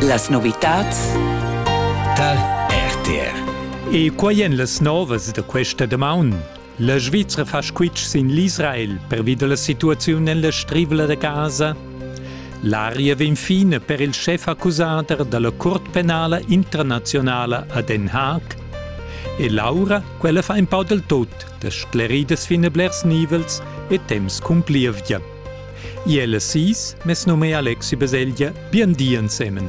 Las novitads tar RTR. E quai èn las novas da questa damaun. La Svizra fa squitsch sin l'Israel pervi da la situaziun en la strivla da Gaza. L'aria vegn fina per il schef accusader da la Curt penala internazionala a Den Haag. E Laura, quella fa in pau del tot, da scleridas fin a blers nivels e temps cun plievgia. Iel e sis, mes num è Alexi Beseglia, bien di ensemen.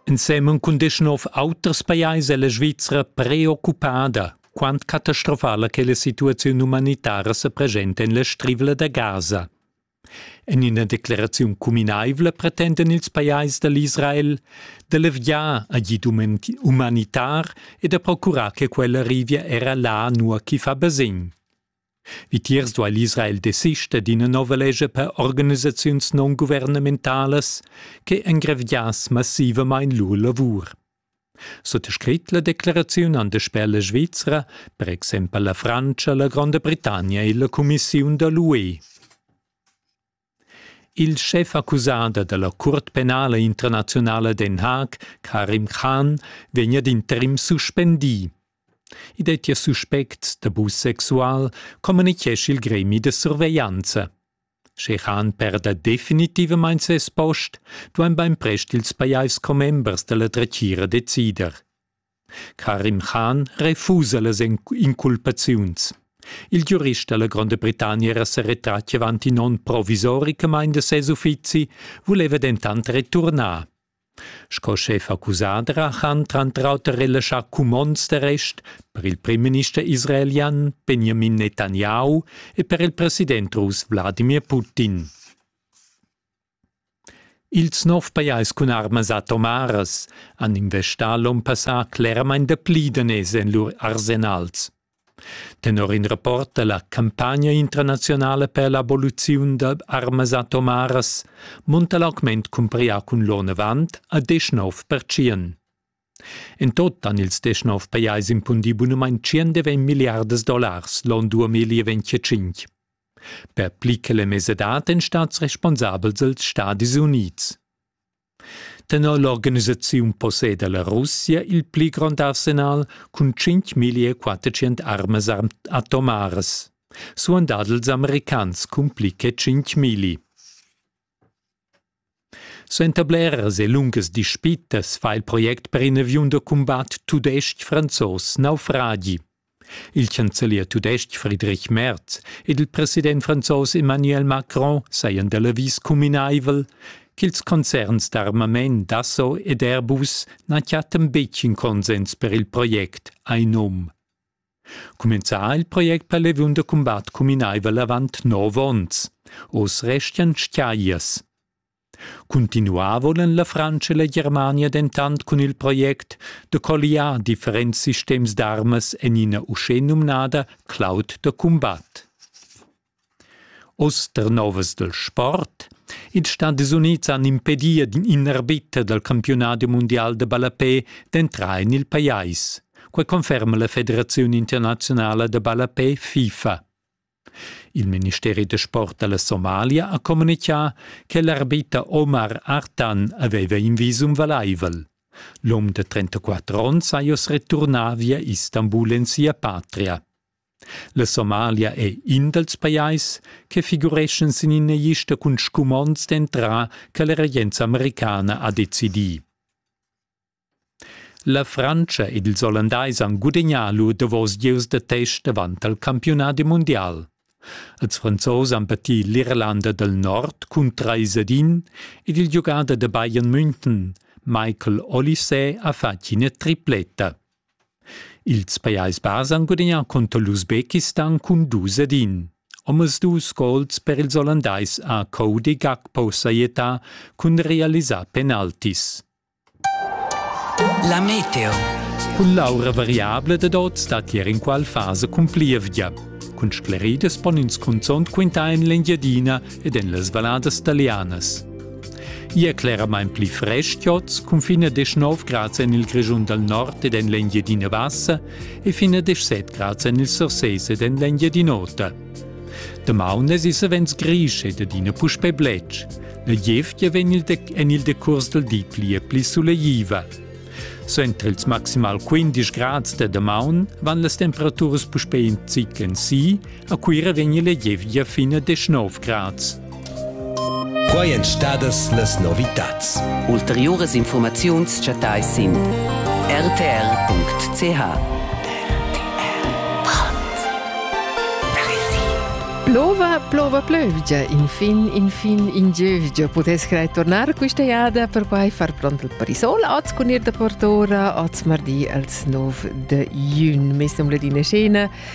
Ensemen cun deschnov auters pajais è la Svizzera preoccupada quant catastrofala che la situaziun umanitara se presenta en la strivla da Gaza. En ina decleraziun cuminaivla pretenden ils pajais da l'Israel da levgiar agid umanitar e da procurar che quella arrivia era là nua ch'i fa basegn. Vitiers duai l'Israel desister d'ina nova lescha per organisaziuns non-guvernamentalas che engraviass massivamain lur lavur. Suttascrit la decleraziun han dasper la Svizra, per exempel la Frantscha, la Gronda Britannia e la cumissiun da l'UE. Il schefaccusader da la Curt penala internaziunala Den Haag, Karim Khan, vegn ad interim suspendì. I dettia suspects d'abus sexual, communichescha il gremi da surveglianza. Sche han perda definitivamain ses post, duain bainprest ils pajais commembers da la dretgira decider. Karim Khan refusa las inculpaziuns. Il giurist da la Gronda Britannia era sa retratg avant in onn provisoricamain da ses uffizi, vuleva dentant returnar. Sco scheffa cusadra han tranter auter relaschà cumonds d'arrest per il primminister israelian Benjamin Netanyahu e per il president russ Wladimir Putin. Ils nov pajais cun armas atomaras han investà l'onn passà cleramain dapli daners en lur arsenals. Tenor in rapport dalla campagna internazionala per l'aboliziun da armas atomaras munta l'augment cumpariu cun l'onn avant a deschnov pertschien. In tot han ils deschnov pajais impundi bunumein tschien de ventg milliardas dollars l'onn 2025. Per pli che la mesadad ein stats responsabels els Stadis Unids. Tenor l'organisaziun posseda la Russia il pli grond arsenal cun 5.400 armas atomaras. Suandad els americans cun pli che 5.000. Suenter bleras e lungas dispitas fa il project per in aviun da cumbat tudestg-franzos naufragi. Il chancelier tudestg Friedrich Merz ed il president franzos Emmanuel Macron sajan da l'avis cuminaivel ch'ils concerns d'armament Dasso ed Airbus na chattan betg in consens per il project Ainum. Cumenzà il project per leviun da cumbat cuminaivel avant nov onns. Oz restian tschaglias. Cuntinuar voul en la Frantscha e la Germania dentant cun il project da colliar differents sistems d'armas en ina uschenumnada cloud da cumbat. Oz der novas del sport. Ils Stati Unids han impedia in arbiter dal campionat mundial de ballapé d'entrar en il pajais. Quai conferma la Federaziun internazionala de ballapé FIFA. Il ministeri da sport dalla Somalia ha communitgà che l'arbiter Omar Artan aveva in visum valaivel. L'um de 34 onns è oss returnà via Istanbul en sia patria. La Somalia è in dals pajais che figureschen sin ina lista cun scumonds d'entrar che la regenza americana ha decidì. La Frantscha ed ils Ollandais han gudegnà lur davos gieus da test avant il campiunadi mundial. Els Franzos han pattì l'Irlanda dal Nord cun trais ed in ed il giugader da Bayern München, Michael Olysee, ha fatg ina tripletta. Ils Pajais Bas han gudagnà contro l'Usbekistan cun dus ed in. Omasdus gols per ils Ollandais a Cody Gakpo Saeta cun realisar penaltis. La meteo. Cun l'aura variabla dad oz stat ier inqual fasa cun plievgia. Cun scleridas pon ins cunzont quintar en l'Engiadina ed en las valladas talianas. Ia cleramain pli frest joz, cun fin a 19 grads en il Grischun dal nord ed en l'Engiadina Bassa e fin a 17 grads en il Surses ed en l'Engiadin'Ota. Damaun es issa vens grisch ed adina puspè bletsch. La gievgia vegn il dec en il decurs dal di pli e pli sulegliva. Suenter ils maximal 15 grads da damaun van las temperaturas puspè in zic en si, a Cuira vegn la gievgia fin a 19 grads. Quai èn stadas las novitads. Ulteriuras infurmaziuns chattai sin rtr.ch. Plova, plova, plövgia, infin, infin, in giövgia pudess crai tornar questa jada, perquai far pront il parisol oz cun ir da Portora oz mardi als 9 de jun. Mes nom Ladina Scena,